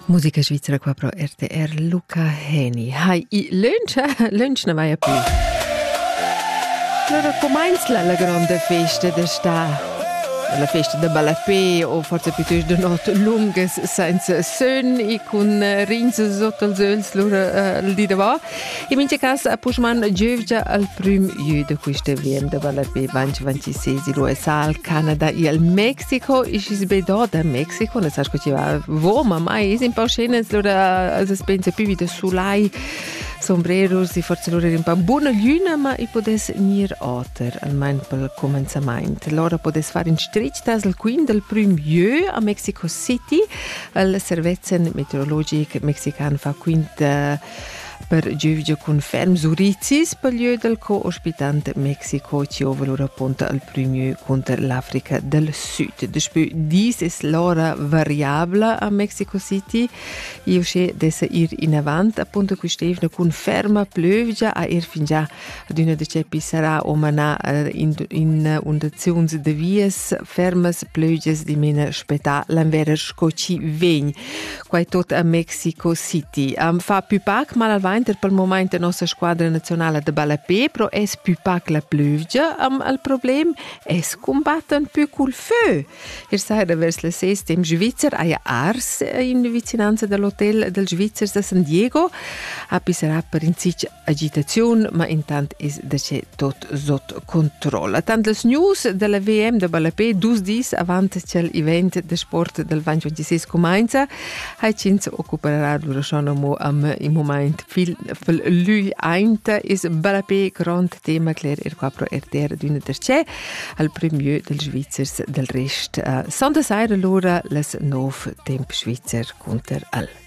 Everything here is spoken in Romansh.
Musica svizzera qua pro RTR Luca Heni. Hai, i lunch, lunch ne mai più. Allora, com'è la, la grande festa d'estate? la festa da ballapé o forse piuttosto de notte lungas senza sun e con eh, rins sotto als öls lura uh, eh, il di da va In mincha cas a Puschman giövgia al prüm jü da quista VM da ballape vanch 26 il USA, al Canada e al Mexico. E schi's be do da Mexico, ne sas co chi va vo, ma mai es in pau scenas, lura as pensa più vi da sulai sombreros e forse lura è un po' buona gliuna, ma i podes gnir oter, almain pel comenzamaint. Lora podes far in stretg tas al quin del prüm jö a Mexico City, al servezen meteorologic mexican fa quint uh, Per giuvgia cun ferm zurizis per lieu del co-ospitant Mexico chiova lur apunta al primier cunter l'Africa del Sud. Daspö dis es l'ora variabla a Mexico City. Io sche dessa ir in avant, apunta quist'evna cun ferma plövgia a ir fingià adüna da Ceppi sarà o manà in, in undaziuns da vias fermas pleugias dimena spetà l'anvera sco ci vegn. Quai tot a Mexico City. Am fa più pac malalvainter pel moment la nossa squadra nazionala de ballapé, però es più pac la plövgia am al problem, es combatten più cul fö. Ier saira vers la ses tem Svizzer haja ars in vicinanza dall'hotel dals Svizzers da San Diego, ha pisserà per in sich agitaziun, ma intant es da che tot sot controlla. Tant las news della VM da Ballapé dus dis avant ch'el event de sport del VAN 26 comenza, hai ch'ins occuperà durant mo am in moment fil, fil lui ainta is Ballapé grand tema cler er qua pro RTR d'una terce al premier dels Svizzers del rest. Uh, Sonda saira lora les nov temp svizzer conter al.